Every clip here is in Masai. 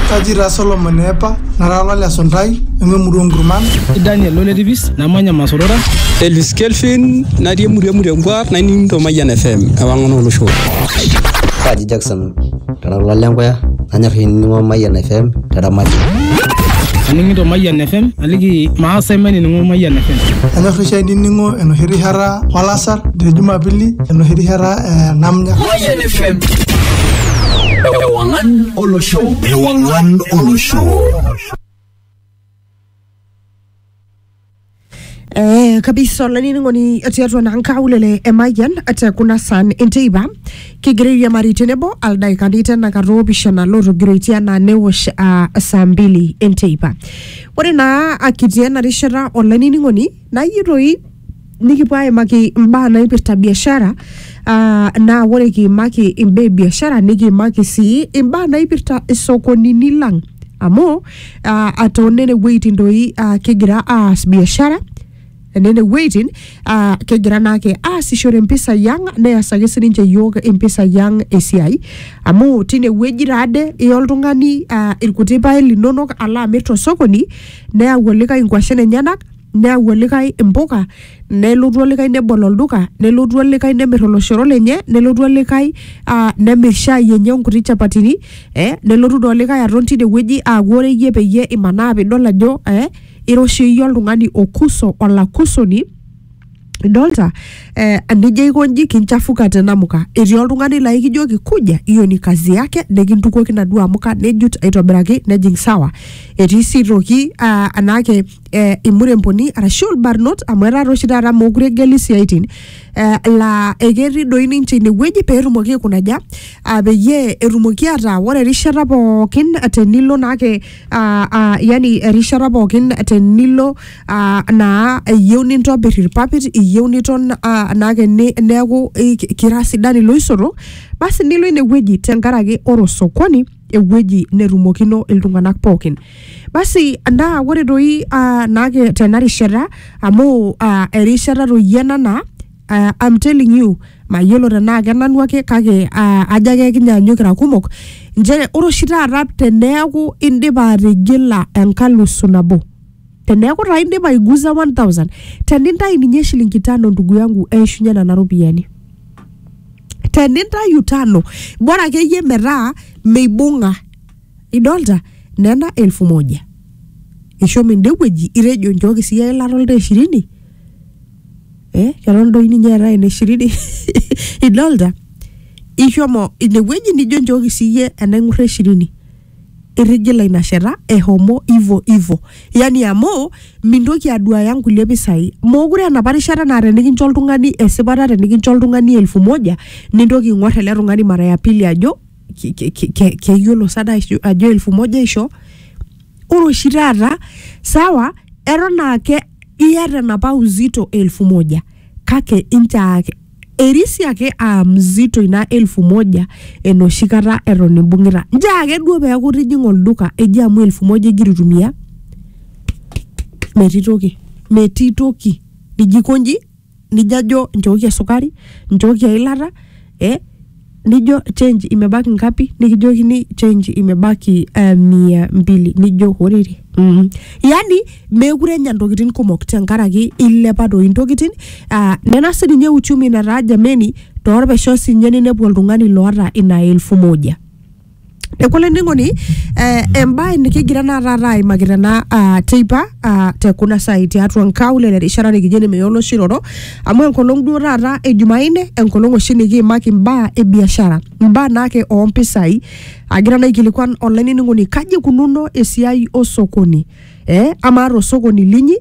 Kaji taa Solomon eepa, nara olale esuntai, nanu emurua onkurman. Kaji Daniel Loletipis, namanya Masorora. Elis Kelvin, natii emurua emurua enkuar, naining' to Mayian FM, ewang'an olosho. Kaji Jackson, kara olale enkuya, nanyor ainining'o Mayian FM te Ramati. Aning'ito Mayian FM, aliki maasa mainining'o Mayian FM. Anyor oshi ainining'o enoshi rishata olasar te Jumapili, enoshi rishata eh, namnya Mayan FM. Ewangan Olo Show. Ewangan Olo Show. Eh, kabisa olanining'oni etii atua naa nkaulele emayian te kuna san enteipa kigira airiamari tenebo aldaikani tenakata oopishana lootogiroitie anaa newosh ah, saa mbili enteipa ore naa akitii ena rishata olanining'oni nayieu toi nikipuo aimaki imbaa naipirta biashara ah, naa ore kiimaki imbaa e biashara nikiimaki sii imbaa naipirta isokonini lang amu ah, atoonene wueitin doi ah, kigira aas biashara nene wueitin ah, kigira naake aasishore impisai ang neas ake sininche yiok impisai ang esiai amu tine wueji taade iya oltung'ani ah, irkuti paek linonok alo amir tosokoni neyau olikae inkuashen enyenak neyau olikae impuka nelotu olikae nebol olduka nelotu olikae nemir oloshoro lenye nelotu olikae uh, nemir shai enye onkuti chapatini eh, nelotu doi olikae aton tinewueji aaku ore iyie peyie imanaa pidol ajo eh, ira oshi iyie oltung'ani okuso olakusoni idolta eh, enijo aiko nji kinchafuka te namuka etii oltung'ani laa ikijoki kuja hiyo ni kazi yake nikintukuoki naduo amuka nejut aitobiraki nejing sawa etii sii toki ah, anaake eh, imuremboni arashu ilbarnot amu etaa oshi taata mookure egeli isiaitin eh, laa eketii doi ninche inewueji peetumoki aikunaja ah, peyie etumoki ataa ore erishata pookin tenilo naake ah, ah, yani erishata pookin tenilo ah, naa eyieu nintobir irpapit iyieu niton ah, naake ni- neeku eh, ki- kira sidan iloisoto basi nilo inewueji tenkaraki ore osokoni ewueji netumokino iltung'anak pookin basi naa ore toi ah, naake tena rishata amu ah, erishata toi ena naa uh, I'm telling you mayiolo tenaa kenanu ake kake uh, ajo ake kinyaanyuk kira kumok nchere ore oshi taata teneeku indipa atigila enkalusu nabo teneeku taa indipa aiguza 1000 tenintayu ninye shilingi tano ndugu yangu eishunye nena ropiyiani tenintayu tano bora akeyie metaa meibung'a idolta nena elfu moja ishomo ende wueji itejo nchooki siiyie eilata oltaa ishirini eh keton doi ninye eetae ene shiriri idolta ishomo inewueji nijo njooki siyie enaing'urra eshirini irrigila ina shata ehomo ivo ivo yani amu mintoki aduaya nkulie pisai mokure enapa rishata naa tenikincho oltung'ani esipata tenikincho oltung'ani elfu moja nintoki aing'orr ele tung'ani mara ya pili ajo ki- ki- ki- ke- keyiolo sada aisho- ajo elfu moja aisho ore oshi taata sawa eton ake iyata enapa uzito elfu moja kake inchoo ake erisi ake aa mzito ina elfu moja enoshi kata eton imbung'ita nchoo ake duo peeku itijing'a olduka eji amu elfu moja igira aitumia metii toki metii toki nijo aikonji. nijo ajo nchooki esukari nchooki eilata eh, nijo change imebaki ngapi nikijokini change imebaki eh, mia mbili nijo horere mm. yani meekure enya ntokitin kumok tenkaraki ilepa doi ntokitin ah, nena sininye uchumi nataa jameni torpesho sinye ninepu oltung'ani loota ina elfu moja Neeku olainining'oni eh, embae nikigira naa taata aimaki tena ah, teipa ah, te kuna saai tiatua nkaulele erishata nikijo ene meya oloshi roro amu enkolong duo taata e Jumanne enkolong oshi nikiimaki imbaa e biashara imbaa naake oo mpisai agira naa aikilikuan olainining'oni kaji ikununo esiai osokoni eh, amaa tosokoni linyi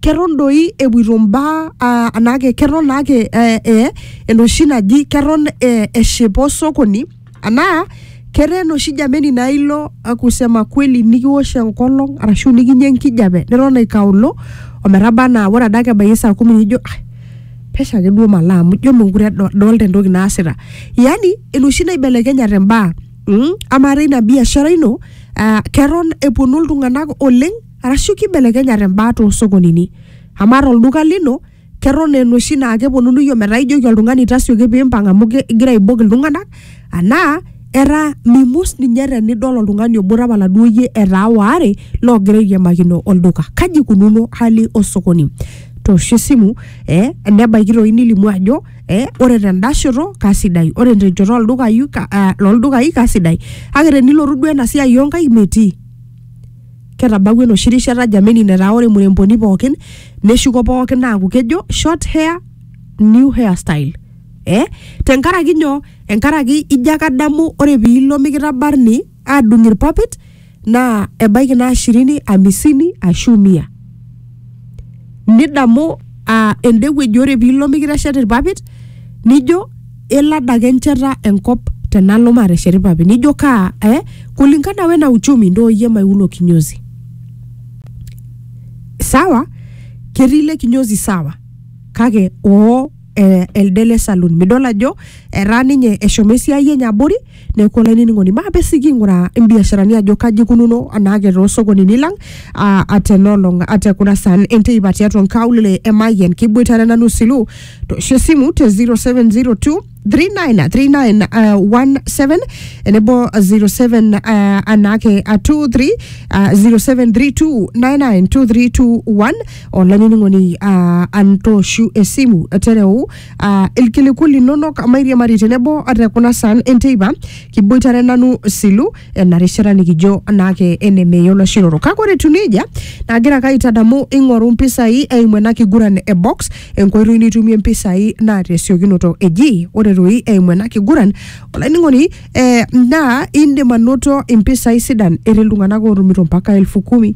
keton doi epuoito mbaa ah, anaake keton naake eh, eh, enoshi naji keton eh, eshipa osokoni anaa ketaa enoshi jameni naa ilo akusema kweli nikiwosh enkolong arashu nikinya enkijape neton aikaullo ometaba anaa ore adake ebaiki saa kumi nijo "Ah, pesho ake duo malo amu ijo mekure edo- adolta entoki naasita yani enoshi naibelekenyate imbaa mm? amaa teina biashara ino uh, keton eponu iltung'anak oleng arashu kibelekenyate imbaa toosokonini amaa tolduka lino keton enoshi naa keponunui ometaa ijoki oltung'ani tasioki piimpang amu ki- igira aibok iltung'anak anaa era mimus ninye tenidol oltung'ani obo tapala duo iyie etaa waare loogira airiamakino olduka kaji ikununo hali osokoni toosho esimu eh, nebaiki toi nilimu ajo eh, ore tenda shoto kasidai ore tenchoto oldukai ka- ah, loldukai kasidai kake tenilotu duo ena siai onkaik metii ketabawua enoshi rishata jameni netaa ore muremboni pookin neshuko pookin aaku kejo short hair new hair style eh? tenkaraki nyoo enkaraki ijo ake adamu ore piilo mikitabarni adung irpapit naa ebaiki naa shirini amisini ashu mia nidamu uh, ende wueji ore piilo mikiteshet irpapit nijo elo adake encheta enkop tenalo mateshet irpapit nijo kaa eh, kulingana wena uchumi ndo oyie maiulo kinyozi sawa ketii ile kinyozi sawa kake oo eh, elde le saloon midol ajo etaa ninye eshomo esiai enye abori neeku olainining'oni maape sii king'uraa imbiasharani ajo kaji ikununo anaake toosokonini lang ah, atenolong ate kuna saan enteipa tiatua nkaulele emayian kiboitare nanu silu toosho esimu te 0702 393917 enebo 07 ah, anaake ah, 23 ah, 0732992321 olainining'oni uh, antoshu esimu tereu uh, ilkiliku linonok mairiamari tenebo te kuna saan enteipa kiboitare nanu silu ena rishata nikijo naake enemeyiolo shiroro kake ore etiu nejia nagira ake aitadamu ing'oru mpisai eimu ena kiguran e box enkoitoi nitumie mpisai naa tesiokinoto eji ore toi eimu ena kiguran olainining'oni eh, naa indim anoto impisai sidan etii iltung'anak ootumito mpaka elfu kumi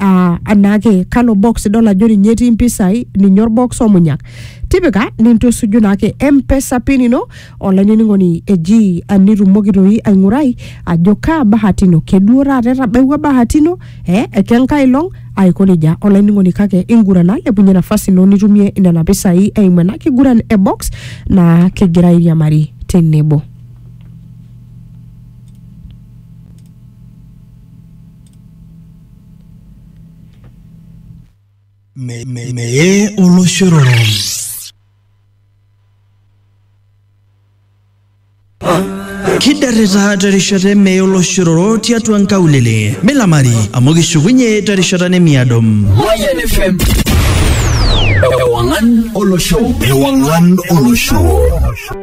aa anaake kalo box idol ajo ninye etii mpisai ninye orbox omunyak tipika nintusuju naake mpesa pin ino olainining'oni eji ah, nitumoki toi aing'urai ajo kaa bahati ino keduo taata etabawua bahati ino eh, ekenkae long aiko nejia olainining'oni kake ingurana lepunye nafasi ino nitumie nena pisai eimu ena kiguran e box naa kigira airiamari tenebo Me- me- Meye oloshororo. kidarrita terishata emeye oloshororo tiatua nkaulele milamari amu kishukunye terishata nemiado Mayan FM. Ewangan Olosho. Ewangan Olosho.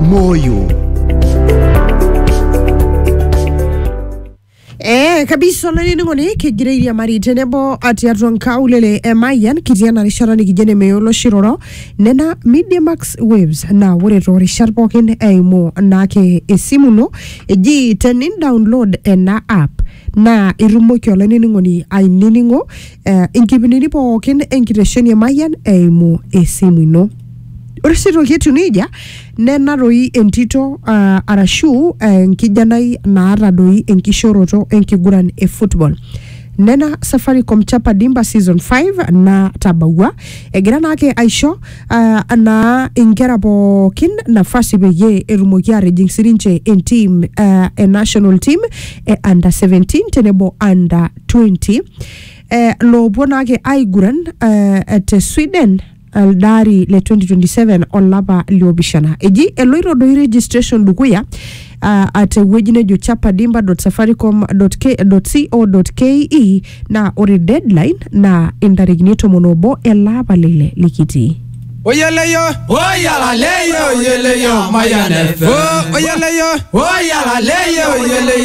Moyo. Eh, kabisa olainining'oni kigira airiamari tenebo tiatua nkaulele e Mayian kitii ena rishata nikijo enemeyo oloshi roro nena Media Max Waves naa ore toorishat pookin eimu naake esimu ino eji tenin download ena app naa itumoki olainining'oni ainining'o eh, inkipindini pookin enkitesheni e Mayian eimu esimu ino. Ore sii toki etiu neija, nena doi entito ah, arashu eh, enkijanai naata doi enkishoroto enkiguran e football. Nena Safaricom Chapa Dimba season 5 natabawua egira naake aisho ah, naa inkera pookin nafasi peyie etumoki atijing sininche entim ah, e national team e under 17 tenebo under 20 eh, loopuo naake aiguran eh, te Sweden elde ari le 2027 olapa liopishana eji eloito doi registration dukuya uh, tewueji nejo chapadimba.safaricom.co.ke naa ore deadline naa intarikini tomon obo ele apa lile likitii Oyeleyo, oyalaleyo, oyeleyo, mayaneve. oyeleyo, Oyalaleyo, oyeleyo,